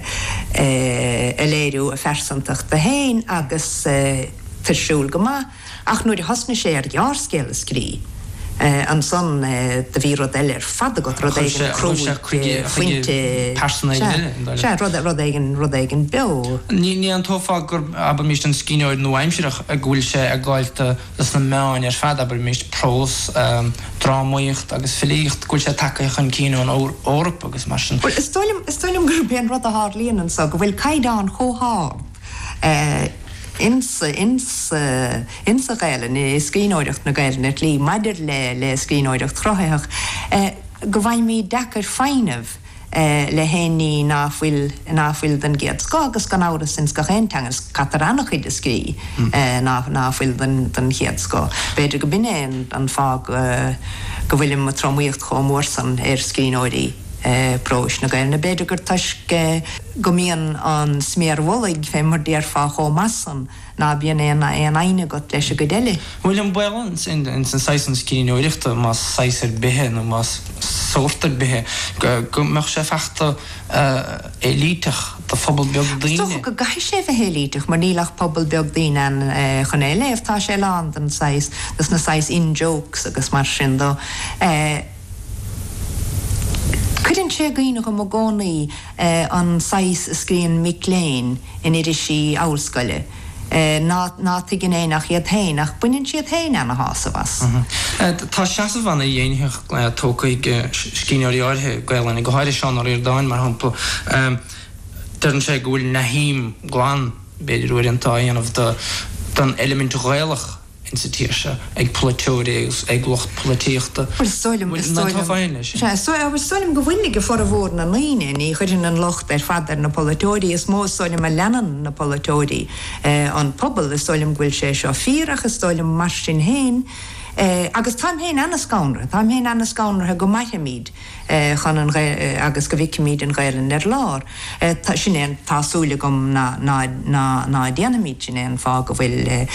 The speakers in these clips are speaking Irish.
a léiriú a phearsantacht féin agus tá's againn go maith ach nuair a thosnaigh sé ar ghearrscéal a scríobh ansan do bhí rud eile ar fad agat rud éigin a chuir sé chuige chuige pearsonal eile an dá seo rud rud éigin rud éigin beo ní aontófá gurb abraimis an scríbhneoir nua-aimsireach go bhfuil sé ag gabháilt sna meáin ar fad, abraimis, prós, drámaíocht agus filíocht, go bhfuil sé tagtha chun cinn ón Eoraip agus mar sin. Bhuel, is dóigh liom, is dóigh liom gurb é an rud a tharlaíonn anseo, go bhfuil caighdeán chomh hard ins an Ghaelainn, i scríbhneoireacht na Gaelainne, at least, maidir le scríbhneoireacht chruthaitheach, go bhfaighimid deacair é foighneamh le haon ní ná fuil ná fuil den gcéad scoth agus gan amhras ins gach aon teanga go gcaitear ana chuid a scríobh ná ná fuil den den chéad scoth. B'fhéidir go b'in é an an fáth go go bhfuil an tromaíocht chomh mór san ar scríbhneoirí próis na Gaelainne. B'fhéidir gur toisc go mbíonn an sméar mullaigh fé mar déarfá chomh maith san Ná bíonn aon fhoighne agat leis an gcuid eile. Bhuel, an baol ins an saghas sin scríbhneoireachta, más saghas ar bith é nó más sórt ar bith é, go mbeadh sé fachta éilíteach do phobal beag daoine. Is dócha go gcaithfidh sé a bheith éilíteach mar níl ach pobal beag daoine ann chun é a léamh. Tá sé lán den saghas, dos na saghas in-jokes agus mar sin de. Cuireann sé i gcuimhne dhom i gcónaí. e An saghas a scríobhann mic léinn in irisí ollscoile ná ná tuigeann éinne ach iad féin ach baineann siad féin ana shásamh as. e Tá seasamh ana ghéaraitheach tógtha ag scríbhneoirí áirithe, Gaelainne go háirithe, Seán Ó Ríordáin mar shampla, deireann sé go bhfuil náid ghlan, b'fhéidir uaireanta, á dhéanamh den eilimint Ghaelach. in sa tír seo, ag polaiteoirí agus ag lucht polaitíochta. Bhuel, sílim, sílim, sea, sea, bhuel, sílim go bhfuil ag formhór na ndaoine. Ní chuirfinn an locht ar fad ar na polaiteoirí. Is mó, sílim, a leanann na polaiteoirí an pobal. Is sílim go bhfuil sé seo fíor ach is sílim, mar sin féin, agus táim féin an-scanraithe, táim féin an-scanraithe go mairfimid, chun an agus go bhfeicfimid an Ghaelainn ar lár. Sin é an tá súil agam ná ná ná ná déanfaimid. Sin é an fáth go bhfuil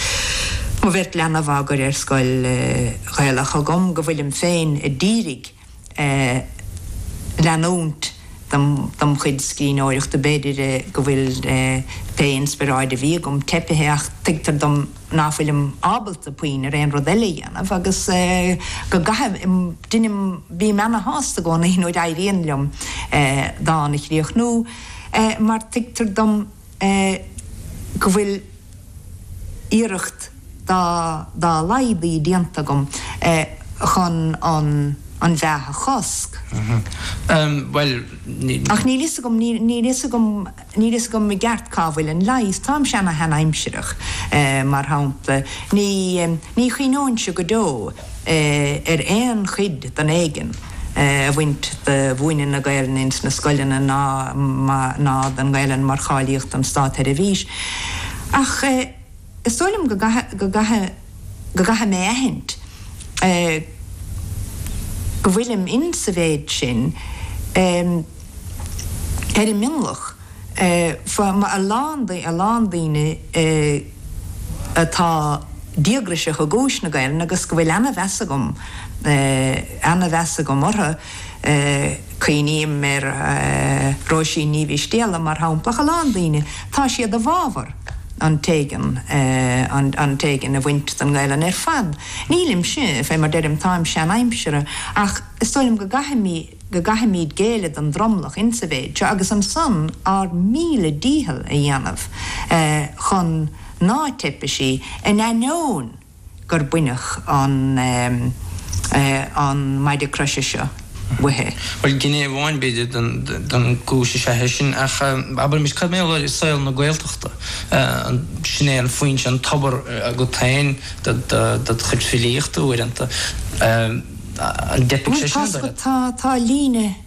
mo bheirt leanbh á gcur ar scoil Ghaelach agam, go bhfuilim féin ag iarraidh leanúint dem dem chuid scríbhneoireachta. B'fhéidir go bhfuil pé inspioráid a bhí agam teipithe ach tuigtear dom, nach bhfuilim ábalta puinn ar aon rud eile a dhéanamh agus go gcaithim, deinim, bím ana-shásta i gcónaí nuair a éiríonn liom dán a chríochnú mar tuigtear dom go bhfuil iarracht dá laghad déanta agam chun an mheath a chosc. Ach níl fhios agam, níl fhios agam. Níl fhios agam i gceart cá bhfuil an leigheas. Táimse ana-sheanaimsireach mar shampla. Ní ní chuimhneóinnse go deo ar aon chuid den éigean a bhaint de mhúineadh na Gaelainne ins na scoileanna ná ná den nGaelainn mar cháilíocht don státseirbhís. Ach is dóigh liom go go gcaithfidh go gcaithfidh mé aithint go bhfuilim insa mhéid sin ar an mionlach fa ma a lán a lán daoine atá díograiseach i gcúis na Gaelainne agus go bhfuil ana-mheas agam ana-mheas agam orthu. Cuimhním ar Róisín Ní Mhistéala, mar shampla, ach a lán daoine. Tá siad i bhfabhar an t-éigean, an t-éigean a bhaint den nGaelainn ar fad. Nílimse, fé mar deirim, táim seanaimseartha, ach is dóigh liom go gcaithfimid, go gcaithfimid géilleadh don dtromlach insa mhéid seo agus ansan ár míle dícheall a dhéanamh chun ná teipfidh sí, in ainneoin. gur baineadh an maide croise seo uaithi. Bhuel, gné amháin, b'fhéidir, den gcúis is ea é sin, ach abraimis, cad mar gheall ar saol na Gaeltachta? Sin é an foinse, an tobar agat féin do do chuid filíochta uaireanta, an dteipfidh sé sin ar do leithéid? Bhuel, tá líne.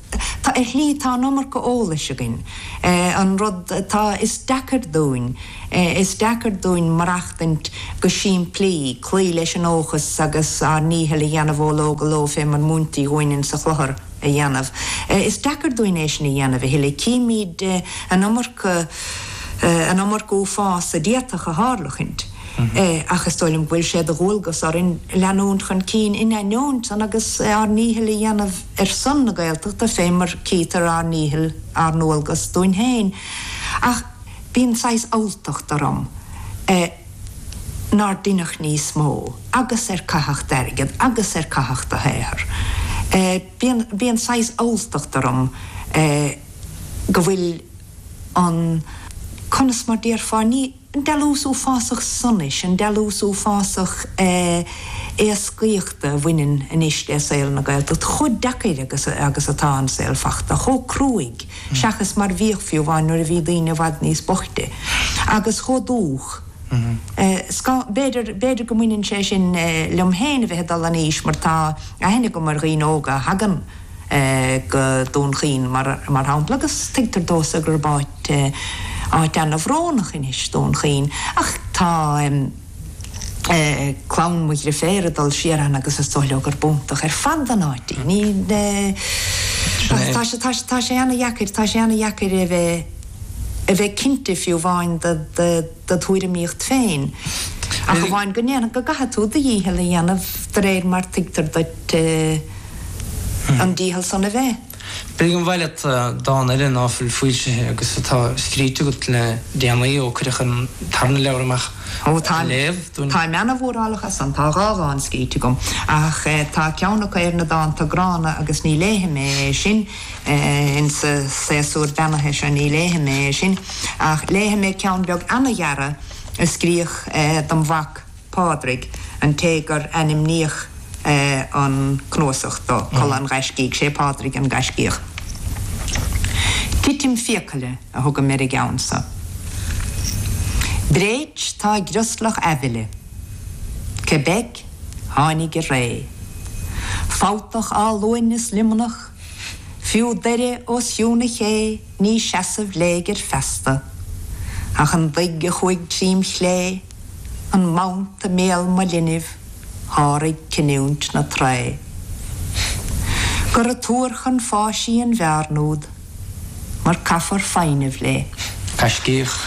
Tá, ar shlí, tá an iomarca eolais againn. An rud atá, is deacair dúinn, is deacair dúinn maireachtaint go simplí, cloí leis an dóchas agus ár ndícheall a dhéanamh ó ló go ló fé mar mhúintí dhúinn insa chlochar a dhéanamh. Is deacair dúinn é sin a dhéanamh a thuilleadh. Címid an iomarca, an iomarca uafás a d'fhéadfadh a tharlachaint. Ach is dóigh liom go bhfuil sé de dhualgas orainn leanúint chun cinn in ainneoin san agus ár ndícheall a dhéanamh. ar son na Gaeltachta fé mar cítear ár ndícheall ár ndualgas dúinn féin. Ach bíonn saghas alltacht orm nár deineadh níos mó agus ar caitheadh d'airgead agus ar caitheadh do shaothar. Bíonn, bíonn saghas alltacht orm go bhfuil an, conas mar déarfá, ní. An dealús uafásach sonais, an dealús uafásach éascaíochta a bhaineann anois le saol na Gaeltachta, chomh deacair agus atá an saol fachta, chomh cruaidh, seachas mar bhíodh fiú amháin nuair a bhí daoine i bhfad níos boichte, agus chomh dúch. B'fhéidir go mbaineann sé sin liom féin a bheith ag dul in aois mar tá aithne agam ar dhaoine óga a thagann, go Dún Chaoin mar shampla agus tuigtear domhsa gurb áit áit ana-bhrónach anois Dún Chaoin ach tá clann mo dheirféar ag dul siar ann agus is dóigh leo gurb iontach ar fad an áit í. Ní Sin é. tá tá sé ana-dheacair tá sé ana-dheacair a bheith a bheith cinnte fiú amháin de do thuairimíocht féin, ach amháin go ndéarfainn go gcaithfidh tú do dhícheall a dhéanamh de réir mar tuigtear duit an dícheall san a bheith. B'fhéidir gurbh áil leat dán eile ná fuil foilsithe agus atá scríte agat le déanaí ó cuireadh an tarna leabhar amach a léamh dúinn. Táim ana-mhórálach as san. Tá dhá dhán scríte agam, ach tá ceann acu ar na dánta gránna agus ní léifidh mé é sin. Insa séasúr beannaithe seo ní léifidh mé é sin, ach léifidh mé ceann beag ana-ghearra a scríodh dom' mhac Pádraig, an té gur ainmníodh an cnuasach dó, Codladh an Ghaiscígh. Sé Pádraig an gaiscíoch. Titim fiacaile a thugaim ar an gceann so. Bréit tá i gcrioslach aibhile. Québec tháinig i ré. Fabhtach Áth Luain is Luimneach. Fiú Doire os cionn a ché ní seasamh léigir feasta. Ach an doigh a chuaigh trím chlé, an mant i mbéal mo linbh, sháraigh cinniúint na Trae. Gura tuar chun fáis í an bhearn úd, mar caithfear foighneamh lé. Gaiscíoch.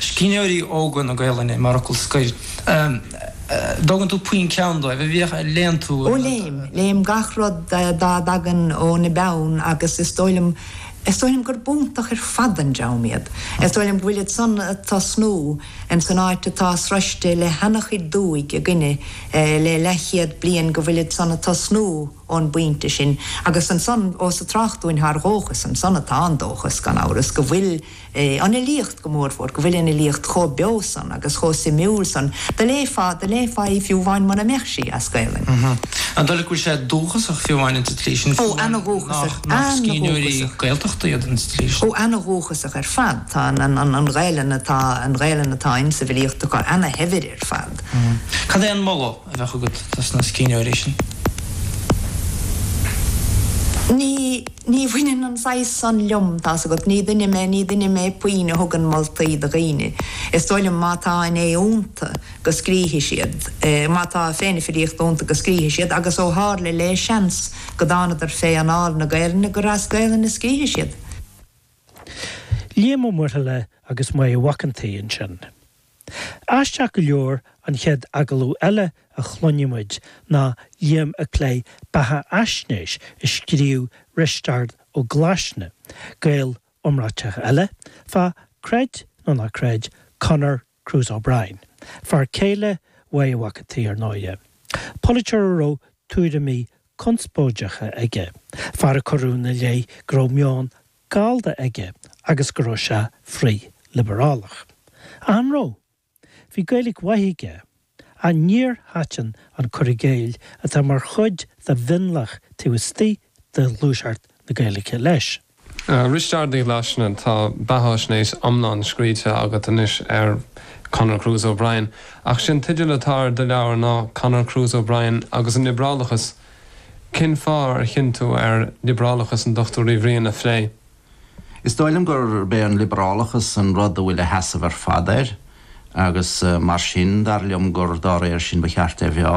Scríbhneoirí óga na Gaelainne mar fhocal scoir. dtógann tú puinn ceann dóibh, a bhíodh ar léann tú an rud. Léim, léim gach rud dá dtagann óna bpeann agus is dóigh liom, is dóigh liom gurb iontach ar fad an dream iad. Is dóigh liom go bhfuilid san ag tosnú insan áit atá sroiste le hana-chuid duaidh againne le leathchéad bliain go bhfuilid san ag tosnú ón bpointe sin agus ansan ós ag trácht dúinn thar dhóchas ansan atá an dóchas gan amhras go bhfuil an fhilíocht go mórmhór, go bhfuil an fhilíocht chomh beo san agus chomh suimiúil san, do léifeá, do léifeá í fiú amháin mura mbeadh sí as Gaelainn. Mh-mh. An dóigh leat go bhfuil sé dúchasach fiú amháin an tslí sin, fiú amháin nach, nach scríbhneoirí Gaeltachta iad an tslí sin? Ó, ana-dhúchasach, ana-dhúchasach. Ó, ana-dhúchasach ar fad. Tá an, an, an, an Ghaelainn atá, an Ghaelainn atá ins an bhfilíocht acu ana-shaibhir ar fad. Mh-mh. Cad é an moladh? a bheadh agat do sna scríbhneoirí sin? Ní, ní bhaineann an saghas san liom, tá's agat. Ní duine mé, ní duine mé puinn a thugann moltaí do dhaoine. Is dóigh liom má tá an aoi iontu go scríobhfaidh siad, má tá féith na filíochta iontu go scríobhfaidh siad agus ó tharla le seans go dtánadar fé anáil na Gaelainne gur as Gaelainn a scríobhfaidh siad. Liam Ó Muirthile agus Máire Mhac an tSaoi ansin. Aisteach go leor, an chéad agallamh eile a chluinfidh muid ná Liam ag plé beathafhaisnéis a scríobh Risteárd Ó Glaisne, Gael iomráiteach eile, fá, creid nó ná creid, Conor Cruise O'Brien, fear céile Mháire Mhac an tSaoi, ar ndóighe. Polaiteoir a raibh tuairimí conspóideacha aige, fear a cuireadh ina leith go raibh meon Gallda aige agus go raibh sé frithliobrálach. An raibh? Bhí Gaeilic mhaith aige. Ach níor thaitin an cur i gcéill atá mar chuid de mhionlach taobh istigh de ghluaiseacht na Gaeilge leis. A Risteaird Uí Ghlaisne, tá beathaisnéis iomlán scríte agat anois ar Conor Cruise O'Brien, ach is é an teideal atá ar do leabhar, ná Conor Cruise O'Brien agus an Liobrálachas. Cén fáth ar chinn tú ar liobrálachas an Dr Uí Bhriain a phlé? Is dóigh liom gurb é an liobrálachas an rud a bhfuil a sheasamh ar fad air agus mar sin dar liom gur dá réir sin ba cheart é a mheá.